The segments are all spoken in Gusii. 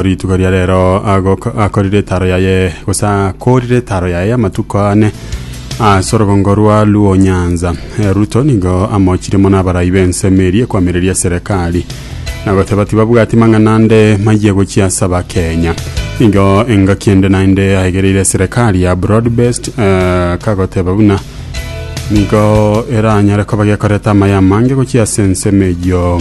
Rituko ria rero agok- akorire etaro yaye, gose akoorire etaro yaye amatuko ane ase orogongo rwa Luo-Nyanza. Eh, Ruto nigo amochire mono abarai b'ensemo eria ekwamireria eserekari, na goteba tibabwati mang'ana ande mayia gochia ase Abakenya. Nigo engaki ende naende aegereire eserekari ya broad-based, eh, kagoteba buna nigo eranyare koba gekoreta amaye amange gochia ase ensemo eyio.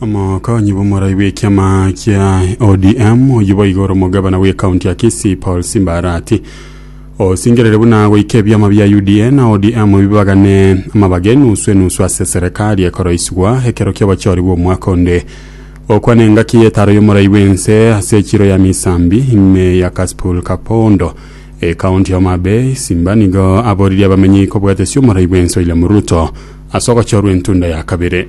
Omokonyi bw'omorai bw'ekiama kia ODM oyio boigo ore omogabana bw'ekaunti ya Kisii Paul Simbarati osingerire buna goika ebiama bia UDA na ODM bibagane amabaga enusu enusu ase serekari ekoroisigwa ekero ki'obochori bw'omwaka onde okwana engaki y'etaro y'omorai bw'ense ase echiro ya misambi ime ya Kasipul Kapondo ekaunti ya Homa Bay Simba nigo aboririe abamenyi kobwatesi omorai bw'ense William Ruto ase ogochorwa entunda ya kabere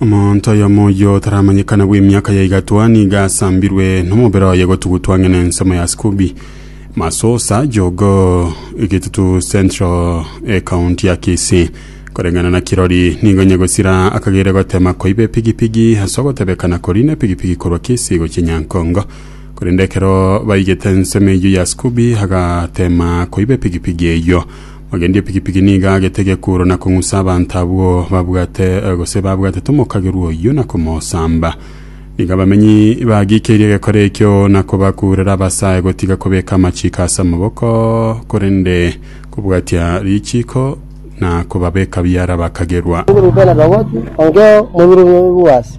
Omonto oyomo oyio otaramanyekana bw'emiaka ya igatwa nigo asambirwe nomobere oye gotugutwa ang'e nensemo ya Scooby Masusa Jogo Egetutu Central ekaunti ya Kisii koreng'ana na kirori nigo onye gosira akagere gotema koiba epigipigi ase ogotebekana korina epigipigi korwa Kisii gochia Nyankongo korende ekero baigete ensemo eyio ya Scooby agatema koiba epigipigi eyio Omogendi epikipiki nigo agete gekooro na kong'usa abanto abwo babwate gose babwatete omokagerwa oyio na komosamba. Nigo abamenyi bagikeirie egekora ekio na kobakurera abasae gotiga kobeka amachiko ase amaboko, korende kobwatia richiko na kobabeka biara abakagerwa. Ring'ana Roboti, Ongeo, Mobiru Boas,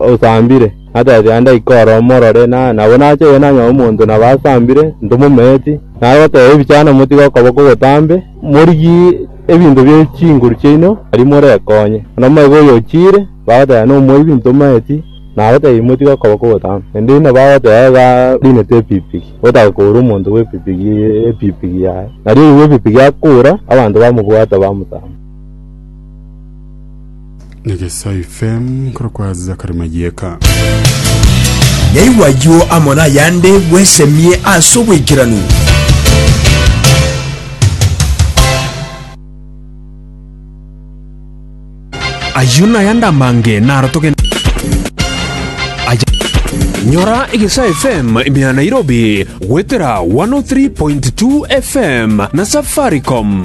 osambire, natebe aye ndaike oro omorore, na nabo nache oye nanyore omonto nabo asambire, ntomometi. Nare goteba ebichano motige okoboko botambe, morigie ebinto bie chinguru chiaino, aria morekonye. Bono omanyete oyo ochiire, bagoteba nomoibi, ntometi, nabo taibi motige okoboko botambe. Naende buna bagoteba iga oinete epikpiki, otake koura omonto bw'epikpiki epikpiki yaye. Nari oyio bw'epikpiki akoura, abanto bamobwata bamotama. Negesae FM korokwa Zachary Mayieka. Naigwa ayio amo nayande bwesemie ase obwaikeranu. Ayio nayande amange naro togende Nyora Egesae FM imea Nairobi goetera 103.2 FM na Safaricom.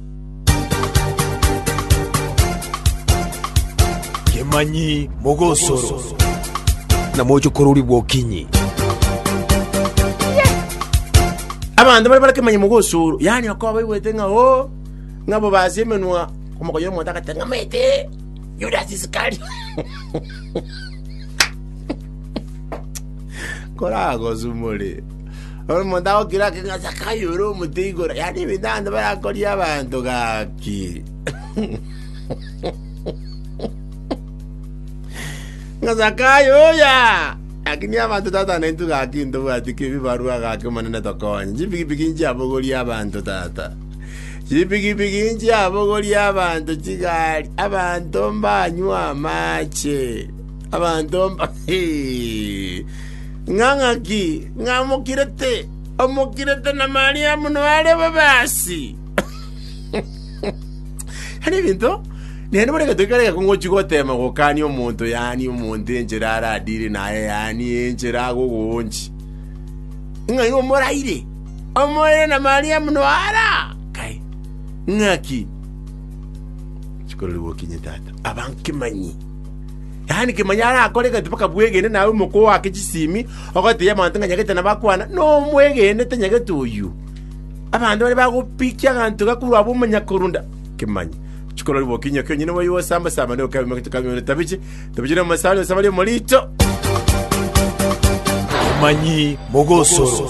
Kemanyi mogosoro, na moche korori bwokinyi. Abanto bare bare kemanyi mogosoro, yaani bakoba baigwete ng'a oo, ng'a bobasi emenwa omokonyi omonto agatang'amaete Yudas Isikario. Koragosumore. Omonto agokira ake ng'a Zakayo ore omote igoro, yaani ebinto abanto barakorie abanto gaki. Ng'a Zakayo oya, lakini abanto tata naintwe gaki ntobwati kebibarua gaki Omonene tokonye. Chipikipiki nchiabogorie abanto tata. Chipikipiki nchiabogorie abanto chigari, abanto mbanywe amache. Abanto mba... Hee. ng'a ng'aki, ng'a omokirete, omokirete na Mariamu noare bobe aasi. Yaani ebinto, naende bono egento ekero egeko ngochia goteema gokania omonto yaani omonto enchera aradire naye yaani enchera agogoonchia. Ng'a igo moraire, omoire na Mariamu noare aa. Kai, ng'aki? Chikorori gokinye tata, abankemanyi. Yaani kemanya arakore egati mpaka bwegene naye omoko oake chisimi ogoteebia abanto ng'a nyagete nabakwana, nomwegenete nyagete oyio. Abanto baria bagopikia aganto aka korwa abwo omanya korunda kemanya. Chikorori boka inyoka onyene oyio osamba samba naye okabe magito kabe ore tabiche tabiche nomosaani ose bare omorito. Abamanyi mogosoro.